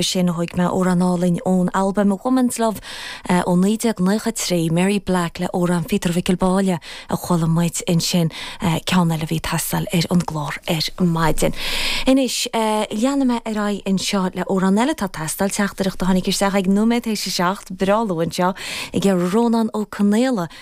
sin thóig mé amhrán álainn ón albaim Woman's Love ó 1993, Mary Black le amhrán Phíotair Mhicil Báille a chuala muid ansin, ceann eile a bhí ag teastáil ar an gclár ar maidin. Anois, leanfaidh mé ar aghaidh anseo le amhrán eile atá ag teastáil, teachtaireacht a tháinig isteach ag nóiméad théis a seacht, breá luath anseo, ag Rónán Ó Conaola,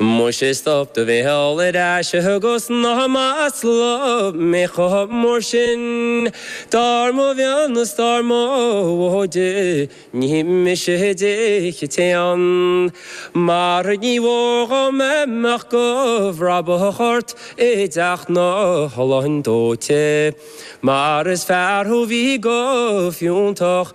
Muise stop do bhéal ar sise agus ná maslaigh mé chomh mór sin dar mo mhionn is dar mo mhóide ní mise a d'ith an t-éan mar ní mhór dhom a mbeadh go bhrabach ort i dteach na holann dóite mar is fear thú a bhí go fiúntach